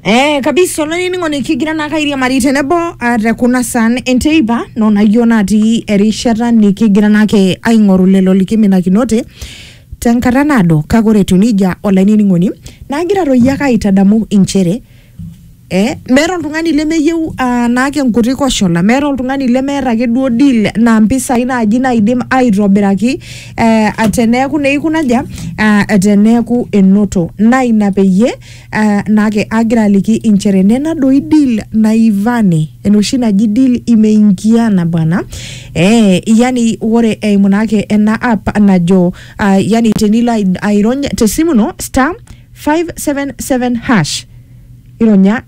Eh, kabisa olainining'oni kigira naa kairiamari tenebo ah, te kuna san enteipa nonayioo natii erishata nikigira naake aing'oru lelo likiminakinote tenkata naado kake ore etiu nejia olainining'oni naagira toi ake aitadamu inchere Eh, meeta oltung'ani lemeyieu ah, naake nkuti koshola meeta oltung'ani lemeeta ake duo deal na mpisai naaji naidim aitobiraki eh, teneeku neikuna ja ah, teneeku enoto na ina peyie ah, naake agira aliki inchere nena doi deal naivani enoshi naji deal imeingiana bwana eh, yani ore eimu naake ena app najo ah, yani tenilo ai- airony tesimu ino star 577 hash ironya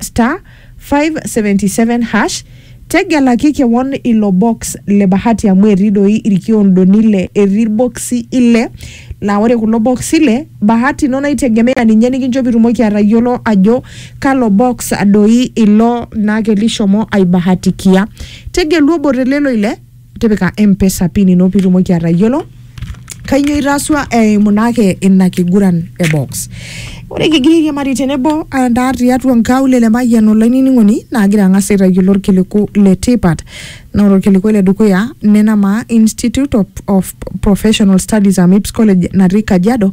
*577# tegelaki kewon ilo box le bahati amu etii doi irkiondoni ile etii irboksi ile laa ore kulo boksi ile bahati ino naitegemea ninye nikincho pitumoki atayiolo ajo kalo box doi ilo naake lishomo aibahatikia tegelu obo te lelo ile tipika mpesa pin ino pitumoki atayiolo kainyoo itaasua eimu naake ina kiguran e box ore kigira airiamari tenebo andaa tiatua nkaulele le mayian olainining'oni naagira ang'as aitayiolo orkiliku le tipat naa ore orkiliku le dukuya nena maa institute of, of professional studies amips college natii kajiado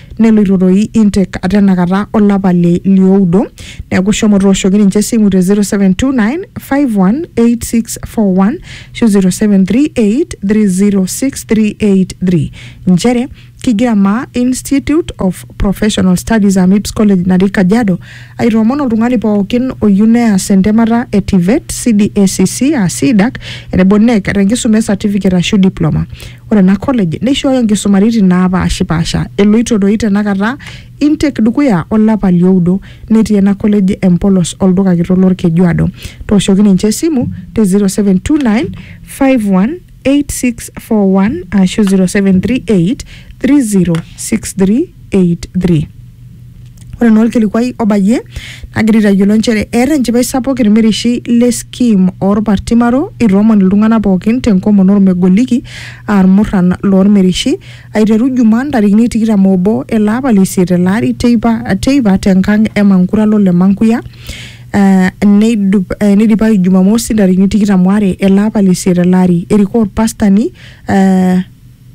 neloito doi intake ate enakata olapa le lioudo neeku shomo tooshoki ninche esimu te 0729518641 ashu 0738306383 nchere kigira maa Institute of Professional Studies AMIPS College natii Kajiado aitoomon oltung'ani pookin oyieu neas entemata e TVET, CDACC aa CDAC tenebo NEC tenkisuma e certificate ashu diploma. Ore ena college neishooyo enkisumaritin naapaashipaasha eloito doi tenakata intake dukuya olapa lioudo netii ena college empolos olduka kitok lolkejuado. Tooshoki ninche esimu te 0729 518641 aashu 0738 306383. Ore naa olkilikuai obayie nagira aitayiolo nchere eeta enchipai sapuk ilmirishi le skim oolpartimaro itoomon iltung'anak pookin tenkomon olmegoliki aa ilmurran loolmirishi aiteru Jumaa ntarikini tikitam oobo ele apa le isiet ele ari teipa teipa tenkang e Mankuralo le Mankuya eh, neidup eh, neidipayu Jumamosi ntarikini tikitam waare ele apa le isiet ele ari. Erikoo olpastani eh,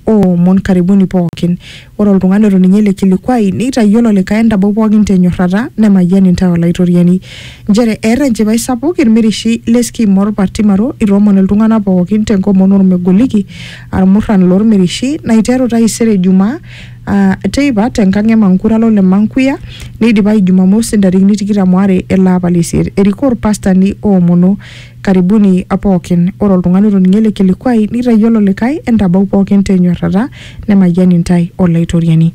o omon karibuni pookin. Ore oltung'ani oto ninye ele kilikuai neitayiolo olikae entabau pookin te nyorrata, nemayian intae Olaitoriani. Nchere eeta enchipai sapuk ilmirishi le Skim o Lpartimaro itoomon iltung'ana pookin te nkomon o lmegoliki aa ilmurran loo lmirishi naiteru taisere Ijumaa aa teipa te nkang e Mankuralo le Mankuya neidipayu Jumamosi ntarikini tikitam o are ele apa le isiet. Erikoo ilpastani oomono Karibuni pookin. Ore oltung'ani otoning'o ele kilikuai neitayiolo olikae, entabau pookin te nyorrata, nemayian intae Olaitoriani.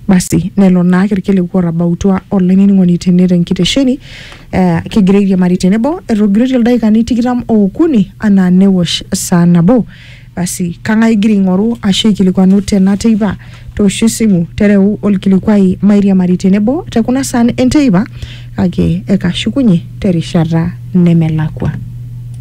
Basi lelo naake ilkiliku ootabautua olainining'oni tene te nkitesheni. Eh, kigira airiamari tenebo, etogiroitie ildaikani tikitam ookuni anaa newosh saa nabo. Basi, kang'ae igira aing'oru ashu aikilikuanu tena teipa? Toosho esimu, tereu olkilikuai mairiamari tenebo te kuna saan enteipa kake ekashukunye terishata nemelakua.